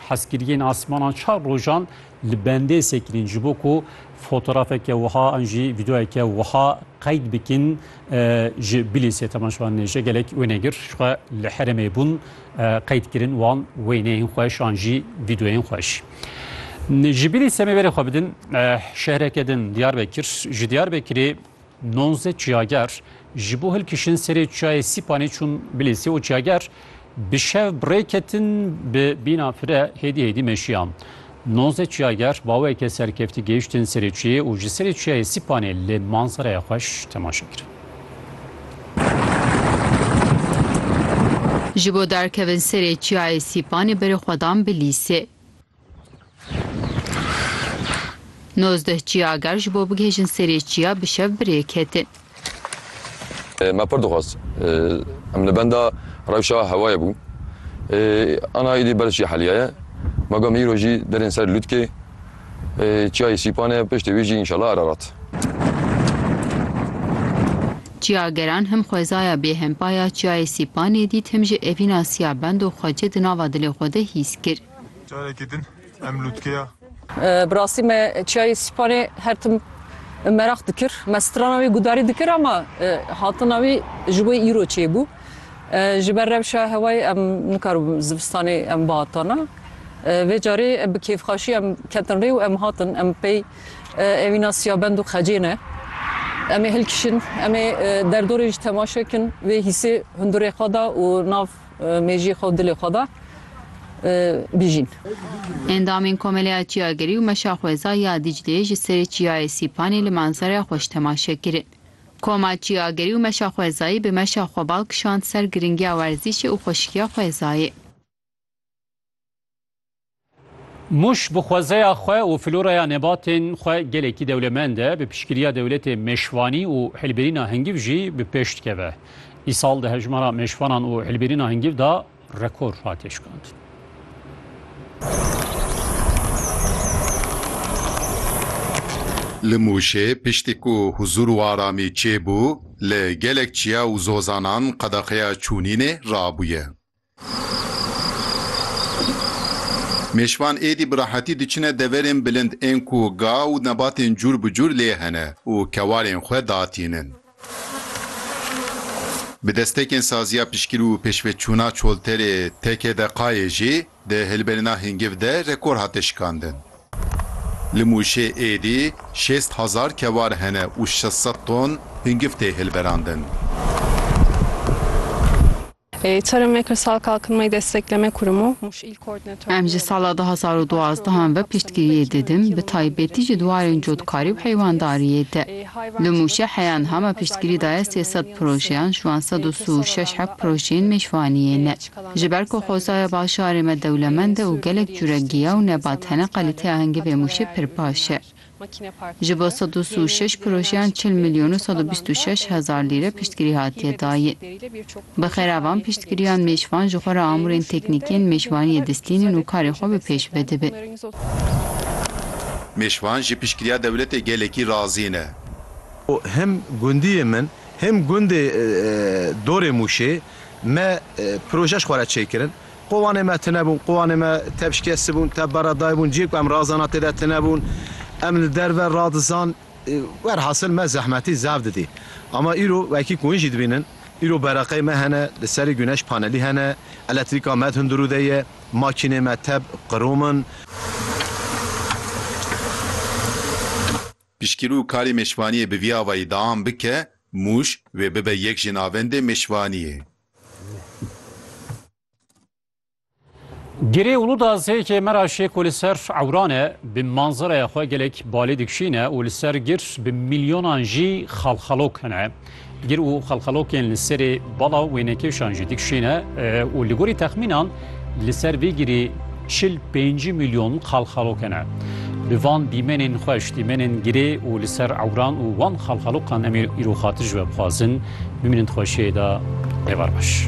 Hezkiriyên asmanan çar rojan li bendê sekirîn ji bo ku fotorafeke wiha an jî vîdeoyeke wiha qeyd bikin ji Bilîsê teman ji wan nêje gelek wê negir ji xwe li herêmê bûn qeyd kirin wan wêneyên xweş an jî vîdeoyên xweş. Ji Bilîsê me verê xwe bidin şehreke din Diyarbekir ji Diyarbekirê Nonzdeh çiyager ji bo hilkişin serê çiyayê Sîpanê çûn Bilîsê û çiyager bi şev bi rê ketin bi bîna fire hêdî hêdî meşiyan. Nonzdeh çiyager baweke serkeftî gehiştin serê çiyê û ji serê çiyayê Sîpanê lê manzeraya xweş temaşe kirin. Ji bo derkevin serê çiyayê Sîpanê berê xwedan Bilîsê. Nozdeh çiya eger ji bo bigihêjin serê çiya bi şev bi rê ketin. Me pir dixwest. Em li benda rewşa hewayê bû. Ana îdî berz çiya heliya ye. Me got me îro jî derên ser lûtkê çiyayê Sîpan e piştê wî jî înşela Ererat. Çiyageran him xwezaya bê him paya çiyayê Sîpanê dît him jî evîna siya bend û xwecê di nava dilê xwe de hîs kir. Carekî din em lûtkeya. Bi rastî me çiyayê Sîpanê her tim meraq dikir. Me strana wî gudarî dikir ama hatina wî ji wê îro çêbû. Ji ber rewşa hewayê em nikaribûn zivistanê em bihatana. Vê carê bi kêfxaşî em ketin rê û em hatin. Em pey evîna siyabend û xecê ne. Em ê hilkişin, em ê derdorê jî temaşe kin. Vê hîsê hundirê xwe da û nav Mejiyê xwe û dilê xwe da bijîn. Endamên Komeleya Çiyagirî û Meşa Xweza ya Dîcleyê ji serê Çiyayê Sîpanê li manzareya xweş temaşe kirin. Koma Çiyagirî û Meşa Xwezayî bi meşa xwe bal kişand ser girîngiya werzîşê û xweşikiya xwezayê. Muş bi xwezeya xwe û floraya nebatên xwe gelekî dewlemend e, bi piştgiriya dewletê mêşvanî û hilbirîna hingîv jî bi pêş dikeve. Îsal di hejmara mêşvanan û hilbirîna hingîv de rekor hate şikandin. Li Mûşê piştî ku huzûr û aramî çêbû, li gelek çiya û zozanan qedexeya çûnînê rabûye. Mêşvan êdî bi rahetî diçine deverên bilind ên ku ga û nebatên cûr bi cûr lê hene û kewarên xwe datînin. Bi destekên saziya pişkîr û pêşveçûna çolterê teke de qayê jî di hilberîna hingiv de rekor hate şikandin. Li Mûşê êdî şêst hezar kewar hene û şeş sed ton hingiv tê hilberandin. Em ji sala du hezar û duwazdeh an ve piştgiriyê didim, bi taybetî ji dwarên cotkarî û heywandariyê de. Li Mûşê heya niha me piştgirî daye sê sed projeyan, ji wan sed û si û şeş hev projeyên mêşvaniyê ne. Ji ber ku xwezaya bajarê me dewlemend e û gelek cure giya û nebat hene, kalîteya hingivê Mûşê pir baş e. Ji bo sed û si û şeş projeyan çil milyon û sed û bîst û şeş hezar lîre piştgirî hatiye dayîn. Bi xera van piştgiriyan mêşvan ji xwe re amûrên teknîkî yên mêşvaniyê distînin û karê xwe bi pêş vedibin. Mêşvan ji piştgiriya dewletê gelekî razî ne. Him gundiyê min him gundê dorê Mûşê me proje ji xwe re çêkirin. Qowanê me tune bûn, qowanê me tevşikestibûn, tevbera daybûn ciyê ku em razana tê de tune bûn. Em li derve radizan. Werhasil me zehmetî zaf didî. Ama îro wekî ku hûn jî dibînin, îro bereqeyê me hene, li serê guneş panelî hene, eletrîka me di hundirû de ye, makînê me teb qirom in. Piştgirû karê mêşvaniyê bi vî avayî deam bike, Mûş wê bibe yek ji navendê mêşvaniyê. Girê û luda zêkê me ra şêko li ser ewran e, bi manzereya xwe gelek balê dikişîne û li ser gir bi milyonan jî xalxalok hene. Gir û xalxalokên li serê bala wênekêşan jî dikişîne û li gorî texmînan Li ser vê girê çil pênc milyon xalxaloke ne. Bi van dîmenên xweş, dîmenên girê û li ser ewran û wan xalxalokan em ê îro xatir ji we bixwazin. Bimînin di xweşiyê de. Êvar baş.